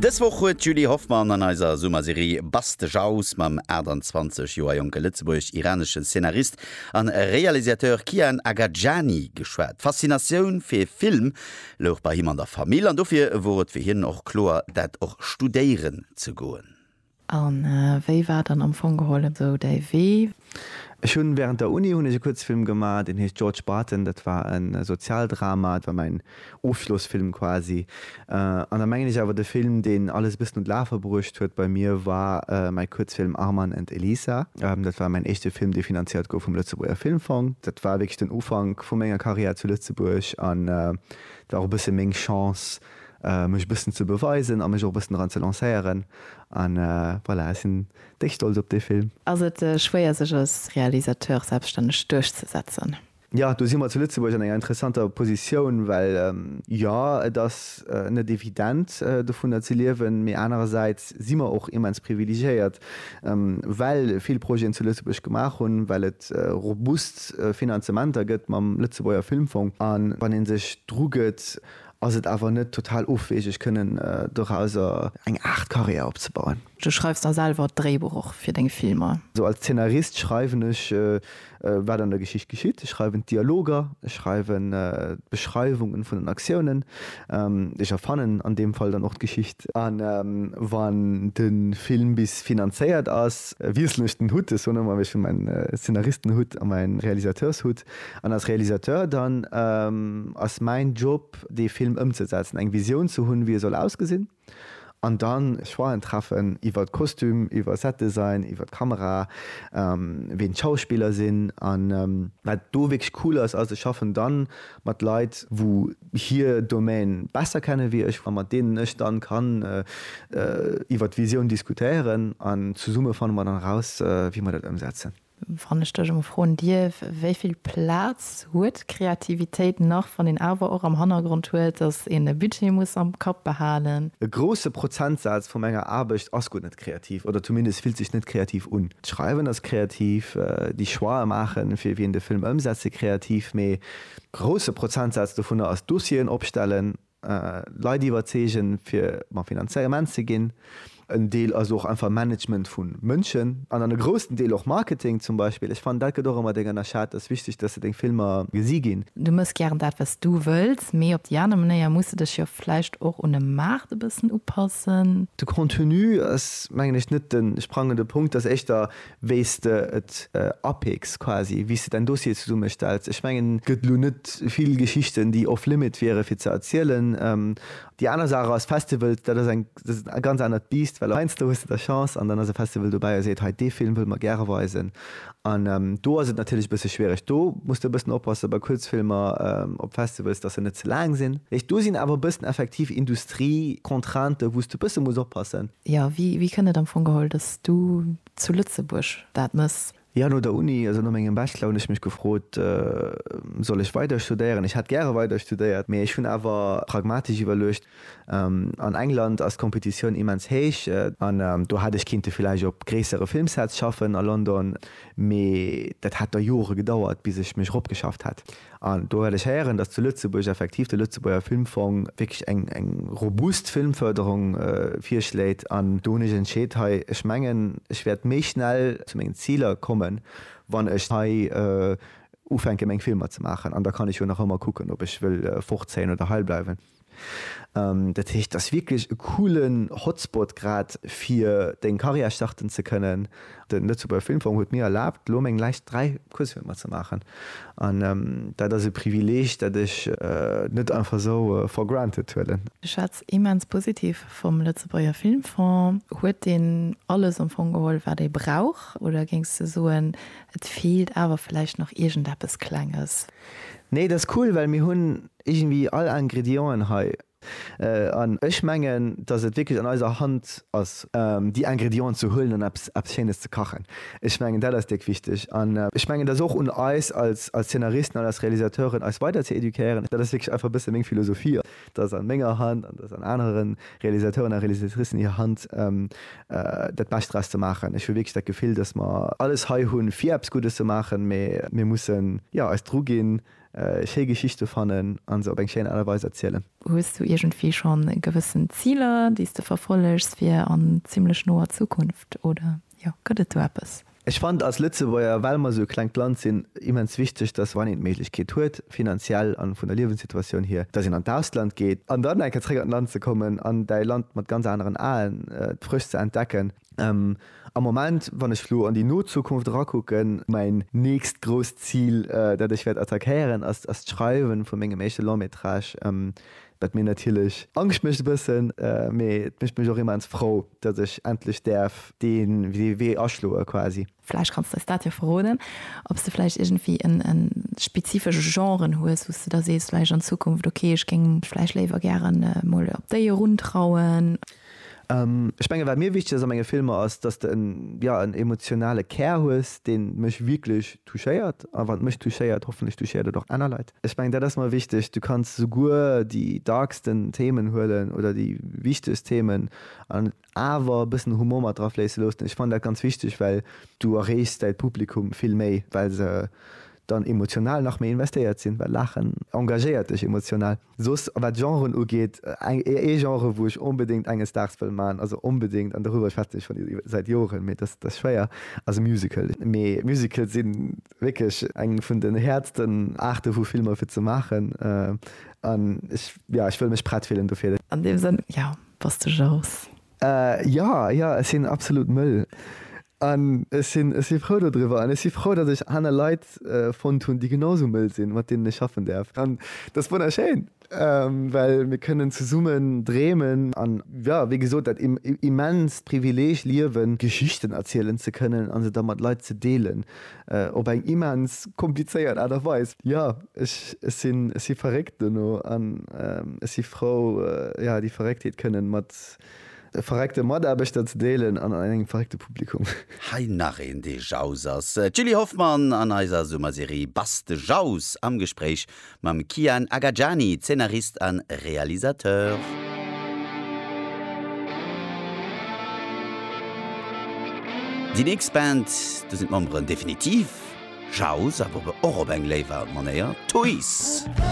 Dës Woch huet d'Julie Hoffmann an eiser Summerserie Buzz de Jauss mam 28 Joer jonke lëtzebuergesch-iranesche Szenarist a Realisateur Kian Agajani geschwat. D'Faszinatioun fir Film louch bei him an der Famill an dofir wor et fir hien och kloer, dat och studéieren ze goen. A wéi war dann am Fong geholl esou däi Wee? Ech hunn während der Uni hunn ech e Kuerzfilm gemaach, deen heescht George Barton. Dat war e Sozialdrama, et war mäin Ofschlossfilm quasi. An da mengen ech awer de Film, deen alles e bëssen un d'Lafe bruecht huet bei mir, war mäi Kuerzfilm Arman and Elisa. Dat war mäin éischte Film, dee finanziert gouf vum Lëtzebuerger Filmfong. Dat war wierklech den Ufank vu menger Karriär zu Lëtzebuerg an et war och e bësse meng Chance, mech e bëssen ze beweisen a mech och e bëssen dran ze lancéieren an voilà, ech sinn déck stolz op dee Film. Ass et schwéier sech als Realisateur selbststänneg duerchzesetzen? Jo, do si mer zu Lëtzebuerg an enger interessanter Positioun, well jo et ass net evident dovunner ze liewen, mee anerersäits si mer och immens privilegiéiert, well vill Projeten zu Lëtzebuerg gemaach hunn, well et robust Finanzementer gëtt mam Lëtzebuerger Filmfong an wann ee sech drugëtt Ass et awer net total ofwegeg kënnen dorauser eng Aart Karriär opzebauen? Du schreifs da selwer d'Dréibuch och fir deng Filmer? Sou als Zeenarist schreiwen ech wat an der Geschicht geschitt. Ech schreiwen d'Dialoger, ech schreiwen d'Beschreiwungen vun den Aktiounen, ech erfannen an deem Fall dann och d'Geschicht. A wann de Film bis finanzéiert ass, wiesselen ech den Hutt, ech soen ëmmer ech hunn mäin Zeenaristen-Hutt a mäin Realisateurs-Hutt. An als Realisateur dann ass mäin Job dee Film ëmzesetzen, eng Visioun ze hunn wéi e soll ausgesinn an dann Choixen treffen iwwert Kostüm, iwwer Setdesign, iwwert Kamera, ween d'Schauspiller sinn. An wat do wierklech cool ass, ass ech schaffen dann mat Leit wou hir Domaine besser kennen wéi ech a mat deenen ech dann kann iwwert d'Visioun diskutéieren an zesumme fanne mer dann eraus wéi mer dat ëmsetzen. Wann ech dech emol froen dierf, wéi vill Plaz huet Kreativitéit nach, wann een awer och am Hannergrond huet, dass een e Budget muss am Kapp behalen? E grousse Prozentsaz vu menger Aarbecht ass guer net kreativ oder zumindest fillt sech net kreativ un. D'Schreiwen ass kreativ, déi Choixë maachen, fir wien de Film ëmsetze kreativ, mee e grousse Prozentsaz dovunner ass Dossieren opstellen, Leit iwwerzeegen, fir mam Finanzement ze ginn. En Deel ass och einfach Management vu Mënschen an dann e groussen Deel och Marketing zum Beispill. Ech fannen, dat gëtt och ëmmer deng ënnerschat. Et ass wichteg, dass se deng Filmer gesi ginn. Du méchs gären dat, wat s du wëlls, mee op déi aner Manéier muss de dech jo vläicht och un e Maart e bëssen upassen. De Contenu ass, mengen ech, net de sprangende Punkt. Et ass éischter, wéi s de et apicks quasi, wéi s de däin Dossier zesummestells. Ech mengen. Gëtt elo net vill Geschichten, déi off limit wiere fir ze erzielen. Déi aner Saach ass, Festivals, dat ass eng ganz anert Biisst, well heiansdo hues de da Chance an dann ass e Festival dobäi a seet, hei dee Film wëlle mer gäre weisen. An do ass et natierlech e bësse schwiereg. Do muss de e bëssen oppasse bei Kuerzfilmer op Festivals, datt se net ze laang sinn. Do sinn awer e bëssen effektiv Industrie-Contraintë wou s de e bësse muss oppassen. Jo, wéi kënnt et am Fong geholl, dass du zu Lëtzebuerg dat mëss? Jo, no der Uni, also no mengem Bachelor, hunn ech mech gefrot, Soll ech weider studéieren? Ech hätt gäre weider studéiert, mee ech hunn awer pragmatesch iwwerluecht, An England ass d'Kompetitioun immens héich, an do hätt ech kinnte villäicht op gréissere Filmsets schaffen a London, mee dat hätt da Jore gedauert, bis ech mech eropgeschafft hätt. An do well ech héieren, dass zu Lëtzebuerg effektiv de Lëtzebuerger Filmfong wierklech eng robust Filmförderung virschléit. An do hunn ech entscheet, hei, ech mengen, ech wäert méi schnell zu mengen Ziler kommen, wann ech hei ufänke meng Filmer ze maachen. An da kann ech jo nach ëmmer kucken, ob ech wëll fortzéien oder heibleiwen. Dat heescht, et ass wierklech e coolen Hotspot grad fir deng Carrière starten ze kënnen. De Lëtzebuerger Filmforum huet mir erlaabt, elo meng Läischt 3 Kuerzfilmer ze maachen. An dat ass e Privileeg, dat ech net einfach esou for granted huelen. Ech schwätz immens positiv vum Lëtzebuerger Filmfong. Huet deen alles am Fong geholl, wat ee brauch, oder géings de soen, et feelt awer vläicht nach iergendeppes Klenges? Nee, et ass cool, well mir hunn Iergendwi all Ingredienten hei. An ech mengen, dass et wierklech an eiser Hand ass, déi Ingredienten ze huelen an eppes, eppes Schéines ze kachen. Ech mengen, dat ass déck wichteg. An ech mengen, et ass och un eis als, als Zeenaristen an als Realisateuren, eis weider ze éduquéieren. Dat ass wierklech einfach e bësse meng Philosophie, dass an menger Hand an dass an anere Realisateuren a Realisatricen hir Hand, dat Bescht draus ze maachen. Ech hu wierklech dat Gefill, dass mer alles hei hunn, fir eppes Guddes ze maachen, mä mir mussen, jo, eis druginn, schéi Geschichte fannen a se op eng schéin Aart a Weis erzielen. Hues du iergendwéi schonn gewëssen Ziler, déi s de verfollegs fir an zimmlech noer Zukunft, oder jo, gëtt et do eppes? Ech fannen als Lëtzebuerger, well mer esou e klengt Land sinn, immens wichteg, dass wann een d'Méiglechkeet huet, finanziell an vun der Liewenssituatioun hier, dass een an d'Ausland geet an dann eng Kéier zréck an d'Land ze kommen an däi Land mat ganz aneren Aen frësch ze entdecken. Am Moment, wann ech elo an déi no Zukunft erakucken, mäin nächst grousst Zil, dat ech wäert attackéieren, ass d'Schreiwen vu mengem éischte Long-métrage, wat mir natierlech Angscht mécht e bëssen, mee et mécht mech och immens frou, datt ech endlech däerf dee Wee aschloe quasi. Vläicht kanns de eis dat jo verroden, ob s de vläicht iergendwéi e spezifesche Genre hues, wou s de da sees vläicht an Zukunft, okay, ech géing mech vläicht léiwer gäre mol op déi eruntrauen? Ech menge wat mir wichteg ass a menge Filmer ass, datt s de en, jo, en emotionale Kär hues, dee mech wierklech touchéiert. A wann et mech touchéiert, hoffentlech touchéiert et och aner Leit. Ech mengen dat ass mer wichteg. Du kanns souguer déi darksten Themen huelen oder déi wichtegst Themen an. awer e bëssen Humor mat dra fléisse loossen. Ech fannen dat ganz wichteg, well du erreechs däi Publikum vill méi, well se dann emotional nach méi investéiert sinn, well Laachen engagéiert dech emotional. Soss wat Genren ugeet, ee Genre wou ech onbedéngt enges Daags wëll maachen, also onbedéngt, an doriwwer schwätzen ech schonn säit Joren, mee dat ass schwéier, ass e Musical. Mee Musicale si wierklech eng vun den häertsten Aarte vu Filmer fir ze maachen an ech, jo, ech wëll mech prett fillen dofir. An deem Sënn, jo, bass de jaloux? Jo, jo, ech sinn absolut mëll an ech sinn, ech si frou dodriwwer an ech si frou, datt ech aner Leit fonnt hunn, déi genau esou mëll sinn, mat deenen ech schaffen däerf. An dat ass wonnerschéin, well mir kënnen zesummen dreemen an, jo, wéi gesot, dat immenst Privileeg liewen, Geschichten erzielen ze kënnen a se da mat Leit ze deelen, Op eng immens komplizéiert Aart a Weis. Jo, ech si verréckt dono an ech si frou, jo, déi Verrécktheet kënnen mat verréckte Mataarbechter ze deelen an an engem verréckte Publikum. Hei nach een, dee Jaus ass. D'Julie Hoffmann an eiser Summerserie Bass de Jaus am Gespréich Mam Kian Agajani, Zeenarist a Realisateur. Déi nächst Band, do sinn d'Memberen definitiv Jauz, awer och op eng léiwer Manéier Toys.